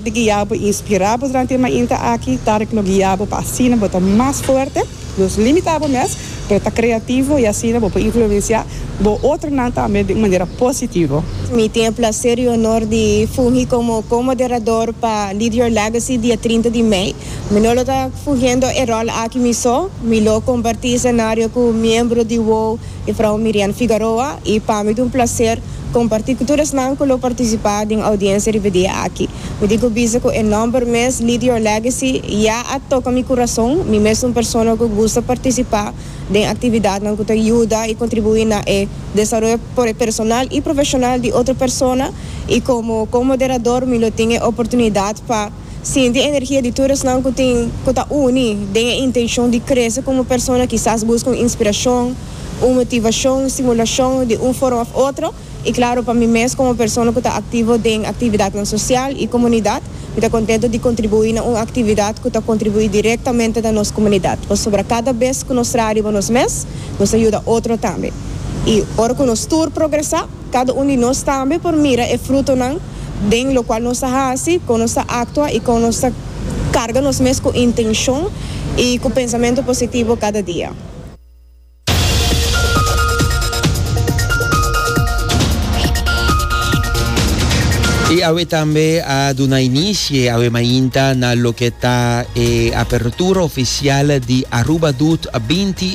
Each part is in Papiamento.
Di guia bo inspirá bo durante e mainta aki, Tarek lo guia bo pa asina bo ta mas fuerte. Nos limita bo mes, pero ta kreativo i asina bo por influensiá bo otronan tambe di un manera positivo. Mi tin e plaser i honor di fungi como co-moderador pa Lead Your Legacy dia trinta di mei. Mi no lo ta fugiendo e rol aki mi so. Mi lo compartí escenario cu miembro di WOW. E frou Mirian Figaroa y pa mi ta un placer comparti cu tur esnan cu lo participa den audiencia riba dia aki. Mi tin cu bisa cu e nomber mes Lead Your Legacy ya a toca mi curazon. Mi mes ta un persona cu gusta participa den actividadnan cu ta yuda y contribui na e desaroyo personal y profesional di otro persona y como co-moderador mi lo tin e oportunidad pa. Sinti energia di tur esnan ku tin ku ta uni den e intenshon di krese komo persona kisas buska un inspirashon, un motivashon, un stimulashon di un forma òf otro i klaro pa mi mes komo persona ku ta aktivo den aktividatnan sosial i komunidat mi ta kontentu di kontribuí na un aktividat ku ta kontribuí direktamente na nos komunidat pasobra kada bes ku nos traha riba nos mes nos ta yuda otro tambe i ora ku nos tur progresá. Cada un di nos tambe por mira e frutonan den locual nos ta haci, con nos ta actua y con nos ta carga nos mes cu intencion y cu pensamento positivo cada dia. Y awe tambe a duna inicie awe mainta na loke ta e apertura oficial di Aruba Doet binti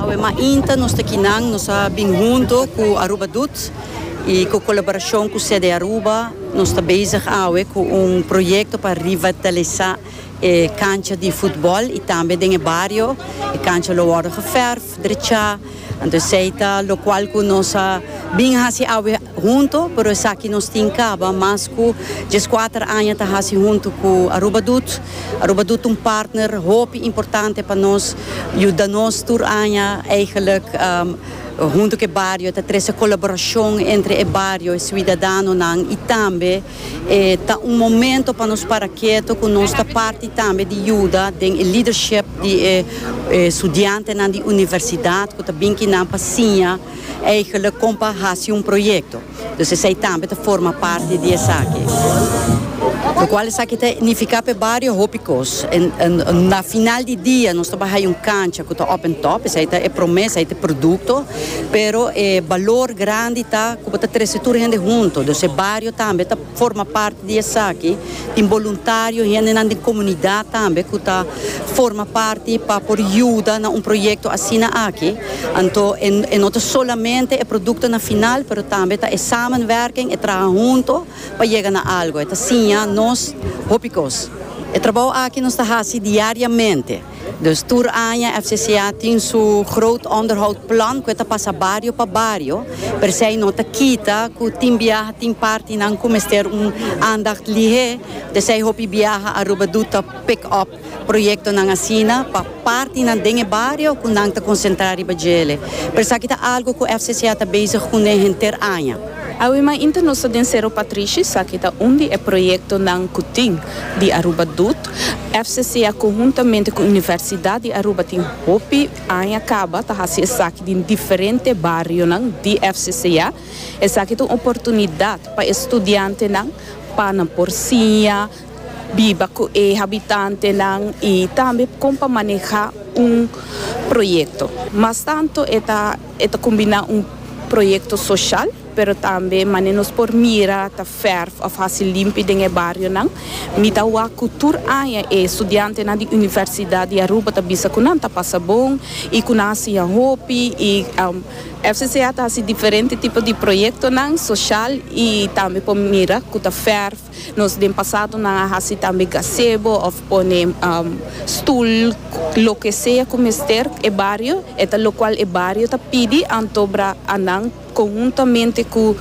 Awe mainta nos ta kinan nos a bin hunto ku Aruba Doet i ku kolaborashon ku Sede Aruba nos ta bezig awe ku un proyekto pa revitalisá e kancha di futbòl i tambe den e bario e kancha lo wòrdu geverf, drechá. Anto esei ta locual cu nos a bin haci awe hunto, pero esaki nos tin caba mas cu diescuater aña ta haci hunto cu Aruba Doet. Aruba Doet ta un partner hopi importante pa nos, yuda nos tur aña eigenlijk hunto cu e bario, ta trece colaboracion entre e bario, e ciudadanonan y tambe. E ta un momento pa nos para keto ku nos ta parti tambe di yuda den e lidership di e studiantenan di universidat ku ta bin kinan pa siña eigelik kon pa hasi un proyekto. Dus esei tambe ta forma parti di esaki. Lokual esaki ta nifiká p'e bario hopi kos. Na final di dia nos ta bai haña un kancha ku ta òp en tòp, esei ta e promé, esei ta e produkto. pero e balor grandi ta cu bo ta trece tur hende hunto, dus e bario tambe ta forma parti di esaki, tin boluntario, hendenan den comunidad tambe cu ta forma parti pa por yuda na un proyecto asina aki, anto e e no ta solamente e productonan final, pero tambe ta e samenwerking, e traha hunto pa yega na algo, e ta siña nos hopi cos. E trabao aki nos ta haci diariamente. Dus tur aña FCCA tin su groot onderhoud plan cu e ta pasa bario pa bario, persei no ta kita cu tin biaha tin partinan cu mester un aandacht lihe, p'esei hopi biaha Aruba do ta pick up proyectonan asina pa partinan den e bario cu nan ta concentra riba djele. Pero esaki ta algo cu FCCA ta bezig cu n'e henter aña. Awe mainta nos ta den Cerro Patrishi, esaki ta un di e proyectonan cu tin di Aruba do. FCC a conhuntamente cu Universidad di Aruba tin hopi aña caba ta haci esaki den diferente barionan di FCC a. Esaki ta un oportunidad pa e studiantenan pa nan por siña, biba cu e habitantenan y tambe con pa maneha un proyecto. Mas tanto e ta e ta combina un proyecto social. Pero tambe manera nos por mira ta fèrf òf hasi limpi den e barionan. Mi ta wak ku tur aña e studiantenan di Universidat di Aruba ta bisa ku nan ta pasa bon i ku nan a siña hopi i FCCA ta hasi diferente tipo di proyektonan soshal i tambe por mira ku ta fèrf. Nos den pasado nan a hasi tambe gasebo òf pone stul loke sea ku mester e bario e ta lokual e bario ta pidi anto bra a nan. Conhuntamente cu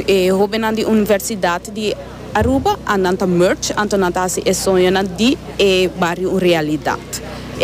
e hobennan di Universidad di Aruba a nan ta merge anto nan ta haci e soñonan di e bario un realidad.